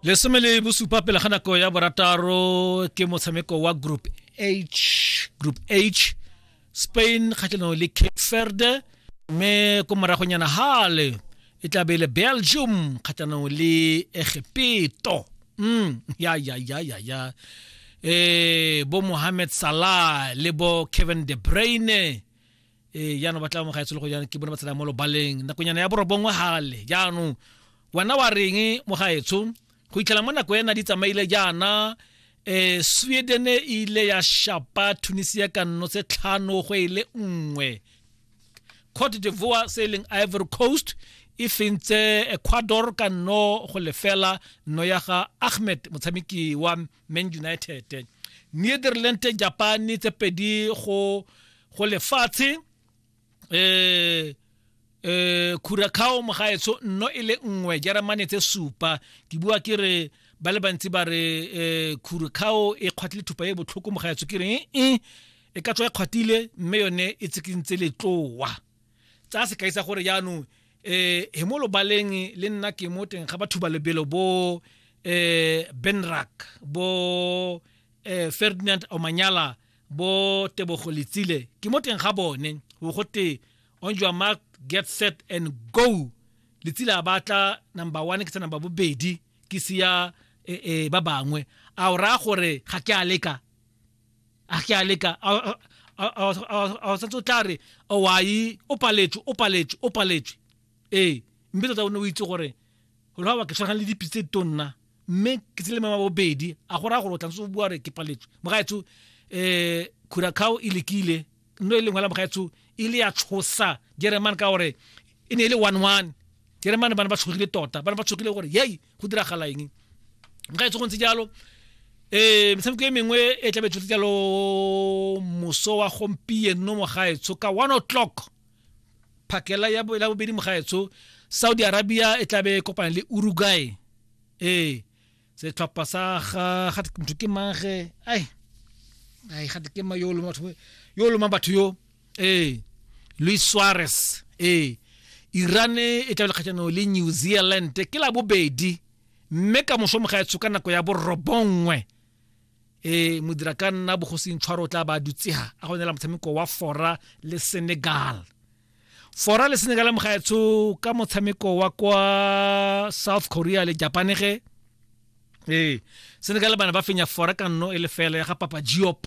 lesome le bosupa pele ga nako ya borataro ke motshameko wa group h group h spain kgatlhanong le cape verde mme ko moragonyana hale e tla be le belgium kgatlhanong le egepeto mm ya ya ya ya ya eh bo mohamed salah le bo kevin de bruyne ee jaanong ba tla mo gaetsolo go jaanong ke bone ba tsena mo lobaleng nakonyana ya borobongwe gale jaanong wena wa reng mo gaetsho go itlhela mo nako ena di tsamaile jaana um sweden e ile ya shapa tunisia ka nno tse tlhano go e le nngwe cote divoire se e leng ivory coast e fentse ecuador ka nno go lefela nno ya ga ahmed motshameki wa man united netherland japan tse pedi go go lefatshe eh eh curacao mogaetso nno e le nngwe jeremane tse supa ke bua ke re ba le bantsi ba re eh curacao e kgwatlile thupa e botlhoko mogaetso ke re e e ka tswa e kgwatlile mme yone e tsikintse letloa tsaya sekai sa gore jaanong eh he mo lobaleng le nna ke mo teng ga batho ba lebelo bo eh Benrak bo eh Ferdinand Omanyala bo Tebogo Letsile ke mo teng ga bone go gote on your mark get set and go Letsile a batla number 1 ke tsa number bobedi ke siya eh, eh ba bangwe a o raya gore ga ke a leka a ke a leka a santse o tla re owayi o paletswe o paletswe o paletswe ee mme tota o ne o itse gore lwa ba ke tshwana le dipi tse tonna mme ke tsele mama bobedi a go raya gore o tla ntse o bua re ke paletswe mogaetsho um eh, curacao e lekile nno e lengwe la mogaetsho e le ya tshosa jeremane ka gore e ne e le one one jeremane ba ne ba tshogile tota ba ne ba tshogile gore yei go diragala eng nka itse go ntse jalo eh metshameko e mengwe e tla betshotse jalo moso wa gompieno mogaetsho ka one o'clock phakela ya bo- la bobedi mogaetsho saudi arabia e tla be e kopana le uruguay ee setlhopha sa ga ga motho ke mange ai ai ga ke ma yo o loma batho yo o loma batho yo ee luis suarez ee iran e tla lekgatlhanong le new zealand ke la bobedi mme ka moso moga etsho ka nako ya borobongwe e modira ka nna bogosing tshwaro o tla ba dutsega a go nela motshameko wa fora le senegal fora le senegal moga etsho ka motshameko wa kwa south korea le japan ge ee senegal bana ba fenya fora ka nno e lefela ya ga papa giop